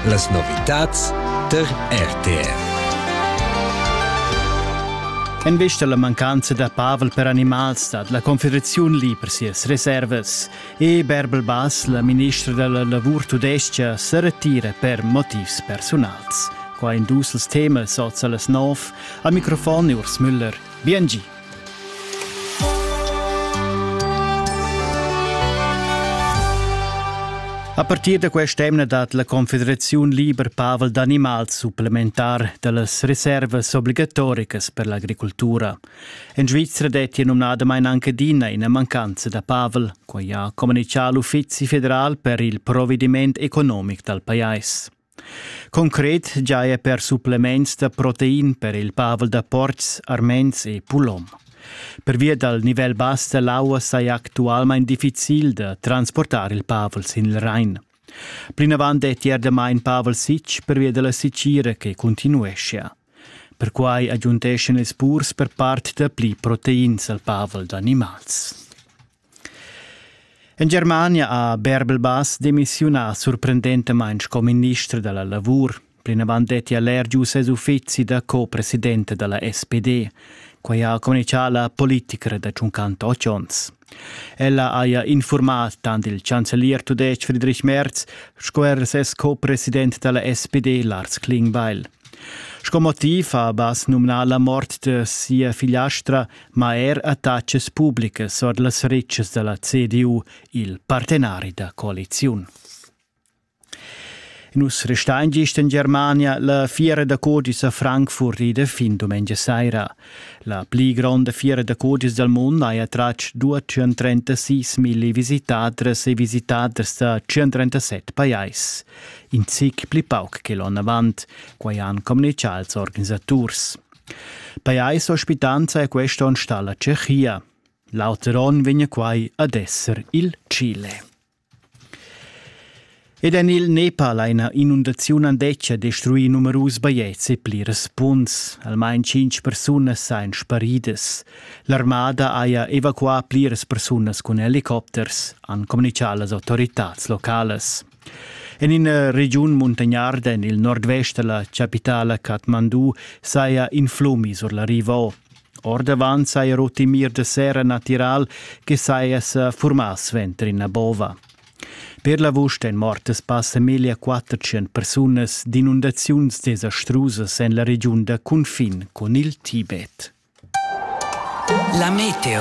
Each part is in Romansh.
Las novitads tar RTR. En vista alla mancanza da pavel per animals stat la Confederaziun lì per sias reservas e Berbel Bass, la ministra della lavur tudesca, se retira per motivs personals. Qua in dus temas oz las nov. Al microfon Urs Müller. Bien gi. A partir da quest'emna dat la Confederaziun liber pavel d'animals supplementar dallas reservas obligatoricas per l'agricultura. En Svizra dettia numnadamain anche adina ina mancanza da pavel, quai ha communichà l'Uffizi federal per il provvediment economic dal pajais. Concret giaja per supplements da protein per il pavel da portgs, arments e pulom. Pervia dal nivel bass da l'aua saja actualmain difficil da transportar il pavel sin il Rain. Plinavant dettia damain pavel sitg pervia da la sitgira che continueschia. Perquai agiunteschan ils purs per part dapli proteins al pavel d'animals. En Germania ha Bärbel-Bass demissiunà surprendentamain sco minister da la lavur. Plinavant detti allergius ses uffizi da co-presidente da la SPD. Quai ha communitgà la politicra da tschuncant otg onns. Ella haja infurmà tant il chancelier tudestg Friedrich Merz sco er ses co-president da la SPD Lars Klingbeil. Sco motiv ha Bass numnà la mort de sia figliastra ma er attachas publicas ord las retschas da la CDU, il partenari da coaliziun. Nus restain gist en Germania la fiera da codis a Frankfurt ida fin domengia saira. La pli gronda fiera da codis dal mund ha attratg 236 milli visitadras e visitaders da 137 pajais. In zic pli pauc che l'onn avant, quai han communichà als organisaturs. Pajais ospitanza è quest onn stà la Tschechia. L'auter onn vegn quai ad esser il Chile. Ed en il Nepal ha ina inundaziun andetga destruì numerus bajetgs e plirs punts. Almain cinc persunas sain sparidas. L'armada haja evacuà pliras persunas cun helicopters, han communitgà las autoritads localas. En ina regiun muntagnarda en il nordvest da la chapitala Kathmandu saja in flumi sur la riva. Ordavant saja rut in mir de serra natiral che saja sa formà suenter ina bova. Per l'avust èn mortas passa meglio 400 persunas d'inundaziuns desastrusas en la regiun da cunfin con il Tibet. La meteo.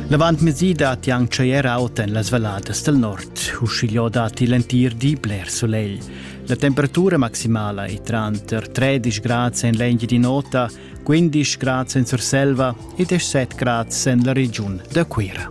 L'avant mesi datti anc tschaier aut en las valladas del nord, uschigliò datti l'entir di bler solegl. La temperatura maximala è tranter 13 grad en l'Engiadin'Ota, 15 grad en Surselva e 17 grad en la regiun da Cuira.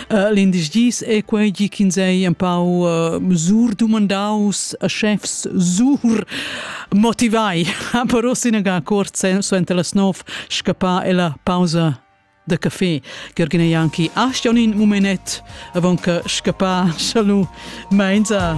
Uh, L'indice gis è quei gi ch'ins ei empau uh, sur dumandaus a chefs sur motivai. Ha però sinaga cort suenter las nov scappà e la pausa da café. Gergina Janki, astionin mumenet avon che scappa, salu, meinza.